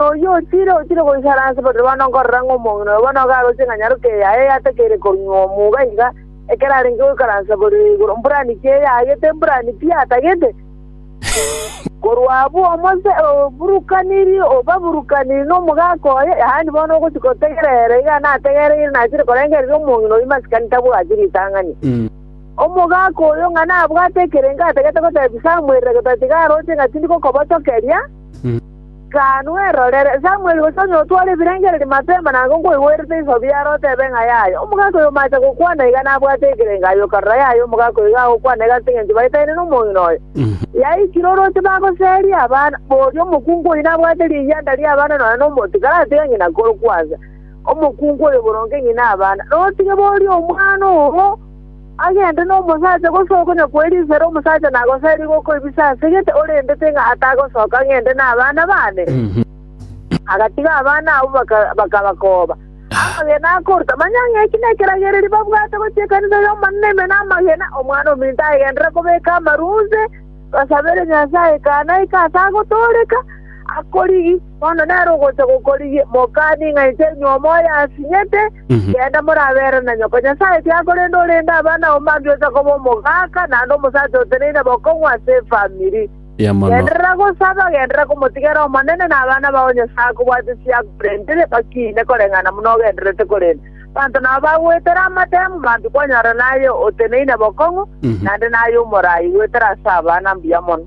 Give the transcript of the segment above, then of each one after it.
Oyio otiire otiire goikara ase bobe bono nkorora ng'a omong'ina oyo bono okaroche ng'a nyaroke yaye yatakeire konyunywa omuga iga ekero arenge goikaransa borere igoro, mburani ki eyagete, mburani pi atagete. Korwa abwo omose oburukaniri, obaburukaniri nomogaka oye, yaani bono ogochia gotegerera iga nategereire nachire korengereria omong'ina oyio masikani tabwati ritang'ani. Omogaka oyo ng'a nabwate ekerengo atagete gotebia Samuel, gotatiga aroche ng'a tindi gokobotokeria. Gano erorere, Samweli gose onye otware ebirengererio mapema na ng'o nkwaigwerete iso biaro otebe ng'a yaya omogaka oyo omache gokwana iga nabwate ekerengo aye okarora yaya omogaka oyo iga agokwana iga ase engencho baetaine nomong'ina oye. Yaikire orooche bagoseria abana, boria omokungu oyio nabwate riyanda ri'abana nonya nomonto ikaratiga ng'ina korokwansa omokungu oyo boronge ng'ina abana, notige boria omwana oo. Agende nomosacha gosokonya kw'erisera omosacha nagoserie gokoibisa ase gete orendete ng'a atagosoka ng'ende nabana baane? Agatiga abana abwo bakabakooba. Amagena akoruta, manya ng'a eki nekeragererio babwate gochia ekanisa y'Omonene ime namagena, omwana ominto agenderere kobeka amaru onsi, basabere Nyasae ekana eke ase agotooreka, akorigi, bono nere ogocha gokorigia, mokani ng'a inche nyuomoye asinyete, Genda morabeere na nyoko Nyasae ekiagera korende orende abana ao mambia oche koba omogaka naende omosacha oteneine bokong'u ase efamiri. Mbuya mono. Genderera gosaba, genderera komotigera Omonene na abana bao Nyasae akobwate chiago korende bakiine koreng'ana buna ogendererete korende banto nao bagoetera amatemu mambia kwanyora naye oteneine bokong'u naende naye omorai goetera ase abana mbuya mono.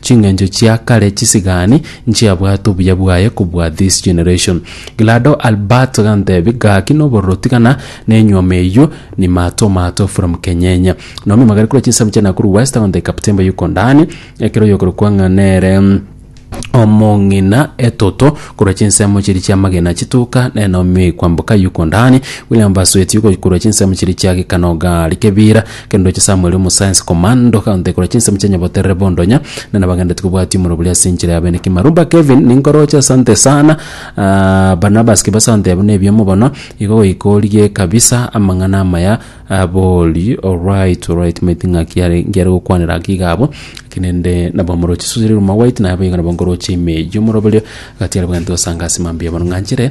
Chingencho chia kare chisigani nchiabwate obuya bwaye kobua this generation. Glado Albert gantebi gaki nobororo tigana nenyuoma eyio ni Mato Mato from Kenyenya. Naomi Magari korwa chisamu chia Nakuru West agonte Captain Bayuko Ndani ekero oyokorokwa ng'a nere omong'ina etoto korwa chinsemo chiria chia Magina chituka nere Naomi oikwa Mboka Yuko Ndani. William Basueti ogokorwa chinsemo chiria chia Gikanoga Likebira. Kende oche Samueli omosayansi komando kaonte korwa chinsemo chia nyaboterere bondonya na nabagendereti kobwati omoro boria ase enchera ya beneki Marumba Kevin ninkoroche asante sana aah Barnabas Kibasa onte abwo nebiamo bono igo goika origie kabisa amang'ana amaya abori alright alright maeti ng'aki yare ngiare gokwanera ng'aki iga abwo ng'aki nende nabo omorochi Suzy Riruma White naye boigo nabo nkoroche ime eyio omoroberio gati aria bwagento gosanga ase mambia bono ng'anchire.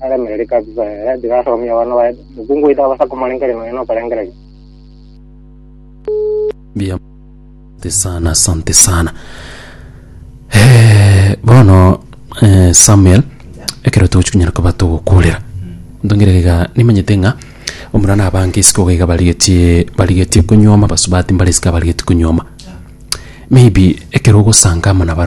aremereri kabisa eh, tiga asomie abana baye mokungu oito abasa komorengeria nonya nokorengereria. Bia asante sana, asante sana. Eh, bono eh, Samuel ekero togochikunyara koba togokurera ntongere iga nimanyete ng'a omura na abange isiko iga iga barigetie barigetie konyuoma basubati mbare isiko abarigetie konyuoma maybe ekero ogosanga amo na barabwo